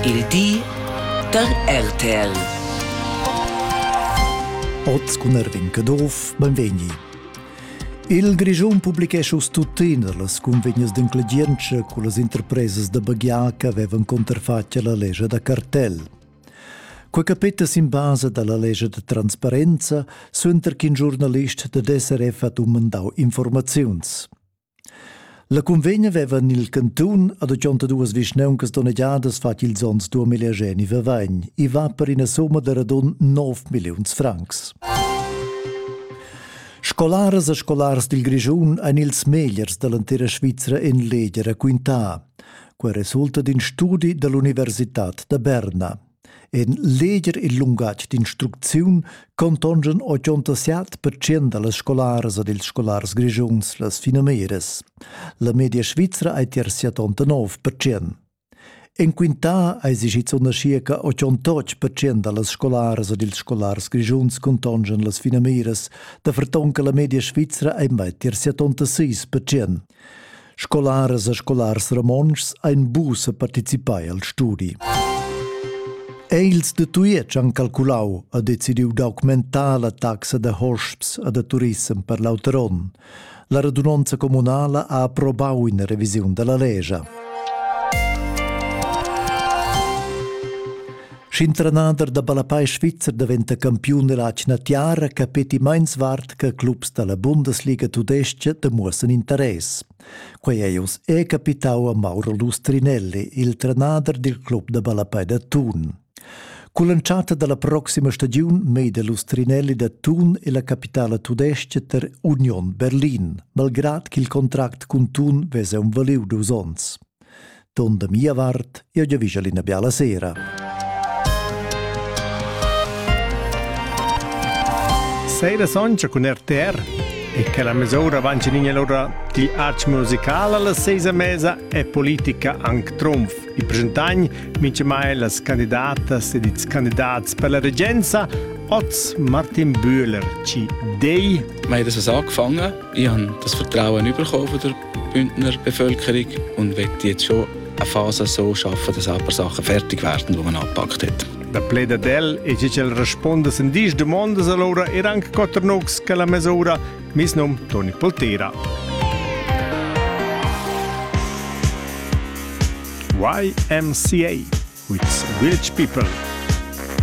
Il di da RTL. Oz cun Erwin Caduff, benvegni. Il Grischun publichescha uss tuttina las cunvegnas d'inclegientscha con las interpresas da baghiar che avevan contrafatg la legge da cartell. Quei capeta sin basa dalla legge de transparenza suenter ch'in giornalist da DSRF ha dumandau informaziuns. La cunvegna veva nel cantun ad duas vischnauncas donnegiadas fatg ils onns 2020. I va per ina somma da radun 9 milliuns francs. Scolaras e scolars dil Grischun ein ils megliers dall'entira Svizra en legia raquintà. Quei resulta d'in studi dall'Universitad da Berna. En leger il lungatg d'instrucziun contongan 87 percent da las scolaras ed ils scolars grischuns las finamiras. La media svizra è tier 79 percent. En quintà eis schizunt aschia che 88 percent da las scolaras ed ils scolars grischuns contongan las finamiras, da ferton che la media svizra è mai tier 76 percent. Scolaras e scolars romontschs ein buca participai al studi. Els de Tujetsch han calculau e decidiu d'augmentar la taxa de hosps e de turissem per l'auter onn. La radunonza comunala ha approbau una revisiun della legia. Sch'in trenader da ballapei svizzer daventa campiun dalla atgna tiara, capeti meins vart che clubs dalla Bundesliga tudestga demuossan interess. Quei ei oz è capitau a Mauro Lustrinelli, il trenader dil club da ballapei da Thun. Con l'entschatta dalla proxima stagiun meide Lustrinelli da Thun e la capitala tudestga ter Union Berlin, malgrad ch'il contract cun Thun vese un valiu dus onns. Don da mia vart, io giavischel ina biala sera. Seira soncha cun RTR e che la mesura avancinigna l'ora di arts musicala la seisa mesa e politica anc trumf. I presentagn mince mai las candidatas ed ils candidats per la regenza Oz Martin Bühler ci dei Ma ich das angefangen. Ich habe das Vertrauen bekommen von der Bündner Bevölkerung und will jetzt schon eine Phase so schaffen, dass ein paar Sachen fertig werden, die man angepackt hat. La pleda del e che el responda sin dis domandas allora er anche quattro nogs che la mesura mis num Toni Poltera. YMCA with Village People.